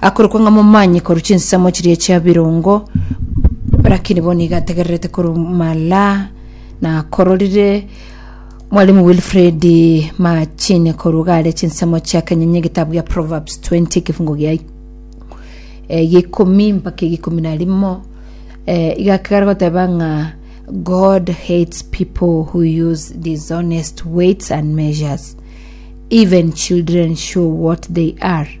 akorokwa ng'a momanyi korwa chinsemo chiria chia birongo lakini bono iga ategererete korwa mala na akororire mwalimu wilfred machine korwa gare chinsemo chia kenyonyi egetabu gia proverbs 20 egefungo gia ik- eh, gia ikomi mpaka egikomi na rimo eh, iga akegara goteba ng'a god hates people who use dishonest weights and measures even children show what they are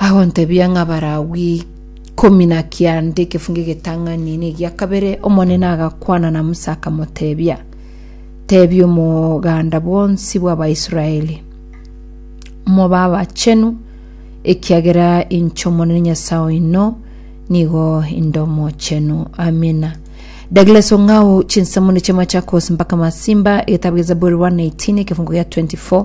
agontebia ng'a Abalawi ikomi na kianda egefungo egetang'ani na egia kabere Omonene agakwana na Musa akamotebia tebia omoganda bwonsi bw'Abaisraeli moba abachenu ekiagera inche Omonene Nyasae oino nigo inde omochenu amina Douglas Ong'ao chinsamuni ch'Emachakos mpaka Masimba egetabu gia Zaburi 118 egefungo gia 24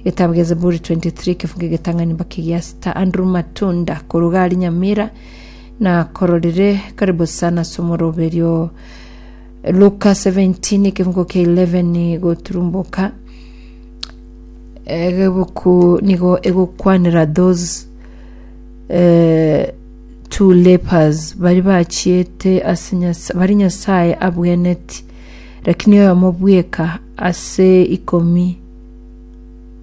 Egetabu gia Zaburi 23 ekefuge getang'ani mpaka egia sita. Andrew Matunda koruga ari Nyamira na kororire karibu sana ase omorobe erio Luka 17 ekefungo kia 11 goturumboka egebuku nigo egokwanera those eh, two lepers bari bachiete ase Nyasa- bari nyasaye abweneti lakini oyo amobweka ase ikomi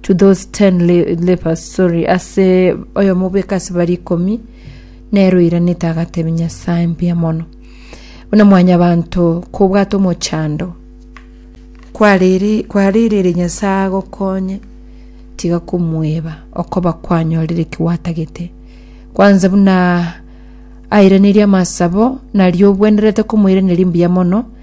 to those 10 le- lepers sorry ase oyomo bweka ase bari ikomi nero oiranete agatebe nyasaye mbuya mono buna mwanya banto kobwata omochando kwariri kwaririre nyasaye agokonye tiga komweba okoba kwanyorire kiwatagete kwanza buna airaneria amasabo nario obwenerete komoiraneria mbuya mono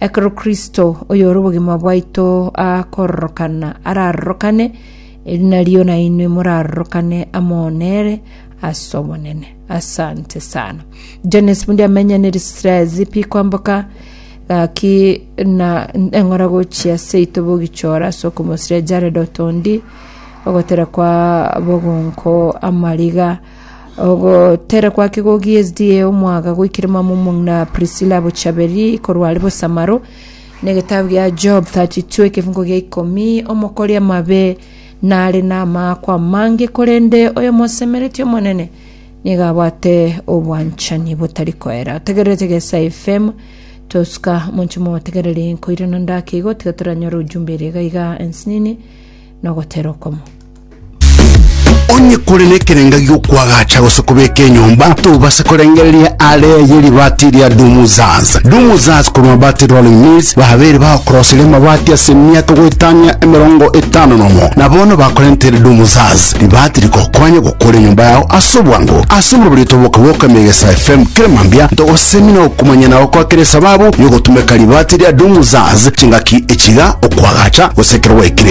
Ekero Kristo, oyore obogima bwaito, akororokana, ararorokane, eri nario nainwe morarorokane amo nere ase Omonene. Asante sana. Jones bundi amenya ne Israel zipi kwamboka gaki na eng'ora gochia seito bogichora ase okomosiria Jared Otondi ogotera kwa bogonko amariga Ogoterekwa ake gogiya ezidi eye omwaga goikire mama omong'ina Prisila bochaberi korwa are bosamaro, na egetabu gia Job 32 ekefungo gia ikomi, omokori amabe nare namaako amange, korende oyomosemeretie Omonene nigo abwate obwanchani botari koera. Otegererete gesa FM tosuka monche motegereri nkoirana ndake igo tiga toranyore ujumbe ere iga iga ensinini nogotera okomo. Onye kore nekerenga gi'okwagacha gose kobeka enyomba, tobase korengereria aare ye ribaati ria Dumuzaz. Dumuzaz korwa Mabati Rolling Mills babeire bagokoroseria amabati ase emiaka goetania emerongo etano nomo, na bono bakorentere Dumuzaz ribaati rigokonye gokora enyomba yao ase obwango. Ase omobario toboka-boka Megesa FM kera mambia ntogosemia na gokumanyia na gokwakera esababu y'ogotumeka ribaati ria Dumuzaz chingaki echiga, okwagacha gose ekero gwaikire.